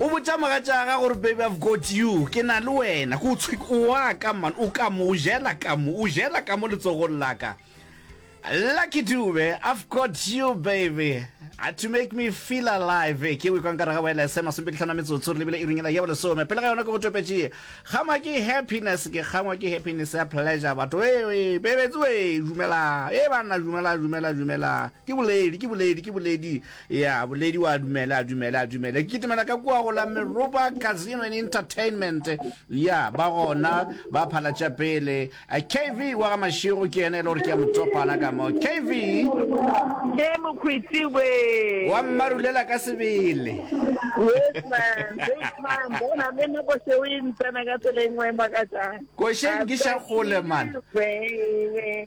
o botša mogatšaga gore baby i've got you ke na le wena ko tshwik o wa ka man o ka mo o jela ka mo o jela ka mo letsogong la ka lucky dube i've got you baby Uh, to make me feel alive eh, ke wekwang kare ga wa lsm masomepedi tlhano metsotso re lebile e ringela ya bolesome pele ga yona ke go topetše kgangwa ke happiness ke kgangwa ke happiness ya pleasure batho ee bebetse e dumela e banna dumela dumela dumela ke boledi ke boledi ke boledi Ya, boledi wa dumele, a dumele, a dumele. Ke kitimela ka kua go la Meropa Casino and Entertainment. Ya, ba gona, ba phalatša pele. A KV wa ga Mašego ke yena e le gore ke ya mo topana ka mo. KV! Ke Mokhwiti we. Wa mmarulela ka sebele. Yes, man. Big time. Bona, le nna ko seo e ntsena ka tseleng wa e makatšang. Košeng ke xa kgole, man. Wee, wee.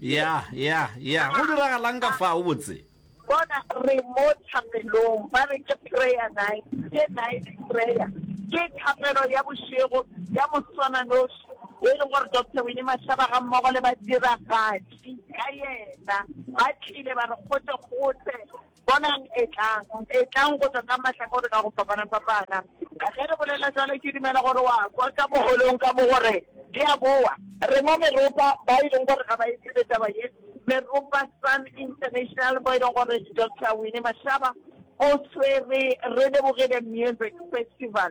ya ya ya go diragalang ka fa o botse bona re mo thapelong ba re ke prayer night ke night prayer ke thapelo ya bošego ya moswananoši e leng gore doctor wine mashaba ga mmogo le badiragatši ka yena ba tlile ba re gote gote Bonang, etlang, etlang go tšwa ka mahlakore ka go fapana-fapana. Ge re bolela bjalo, ke dumela gore wa kwa ka moholong ka mo gore, Di a boa. Rena meropa ba e leng gore ga ba e tsebe taba ye, Meropa Sun International, mo e lego gore Doctor Winnie Mashaba o swere, re lebogile Music Festival.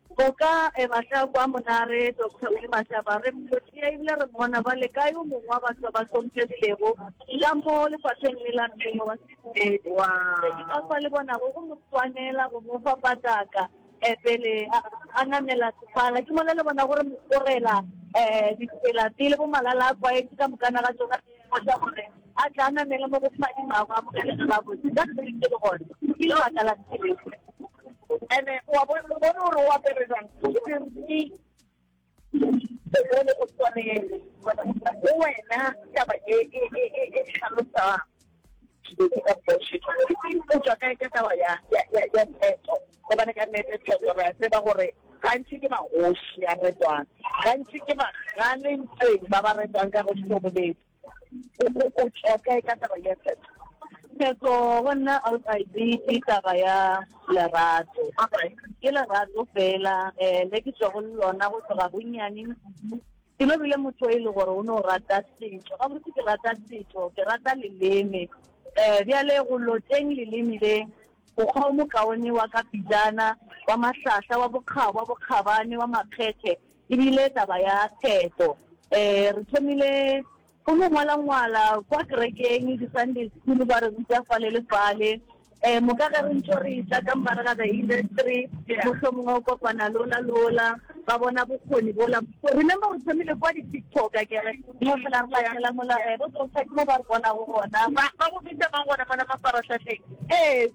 O ka eba hle a kwa monare, Doctor Willy Mashaba. Re mmotia ebile re mmona. Bjale, kae o mongwe wa batho ba ba hlomphegilego ka mo lefapheng le la mmele wa sedumedi? Se ke ka kwa le bonago go mo swanela go mo fa pataka um pele a, a namela sefala. Ke mola le bona gore mo tsorela um ditsela pele bo malala-a-kwaetše ka mokana ga tšona, go tšwa go re. A tle a namele mo go Modimo a mo amogele ge gabotse, ka sebele ke le gona, ke lebaka la sebele. And-e o a bona, o bone gore o apere jang, ke dimpshe tse bone go swanele, go wena taba e, e, e, e, e tlhalosang dilo tse ka bullshit. O tšwa kae ka taba ya, ya, ya, ya theto, gobane ka nnete theto re a tseba gore gantši ke magoši a retwang, gantši ke ba, ga le ntšeng ba ba retwang ka goši bobedi. o tšwa kae ka taba ya tshetso tshetso go nna outside ke taba ya lerato ke lerato fela um le ke tswa go lona go tloga bonnyane ke no bile motho e le gore o ne o rata setso ka botse ke rata setso ke rata leleme um bjale go loteng leleme le mokgwa o mokaone wa ka pijana wa mahlahla wa bokgabo wa bokgabane wa makgethe E bile taba ya pheto. Re thomile go no ngwalangwala kwa kerekeng, di-Sunday school ba re ruta fale le fale. Moka ge re ntšo re tla ka mogare ga the industry, mohlomongwe o kopana lola lola, ba bona bokgoni bola. Remember re thomile kwa di-TikTok akere, mo fela re latlhela mola, bo Doctor ke mo ba re bonago gona. Ba bo bitsa mang gona mona mafarahlahleng? Ee.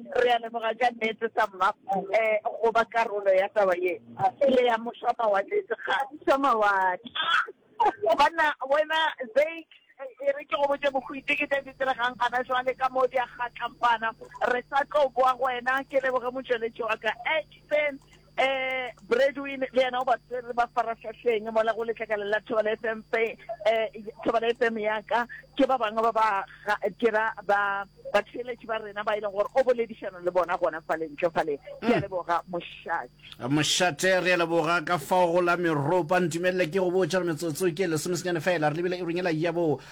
Re a leboga ka nnete, sa mma, go ba karolo ya taba ye e le ya Mošwamawatle, Segatšwa Mawatle. Banna, wena Zake, e re ke go botše bohwiti ke tše di diregang gona jwale ka mo di a kgatlampana. Re sa tlo boa go wena. Ke leboge motšweletši wa ka, Ashton. Eh, Bradwin le yena o ba tsere ba farahlahleng mola go letlakala la Thobela FM pe eh Thobela FM ya ka ke ba bangwe ba ba ga- ke ra ba ba tsheletši ba rena ba ile gore o boledišana le bona gona fa le ntle fa le ke a leboga mošatši mošate re a leboga ka fao go la meropa ntumelele ke go botša re metsotso ke lesomesenyane fela re lebile e ronyela ya bo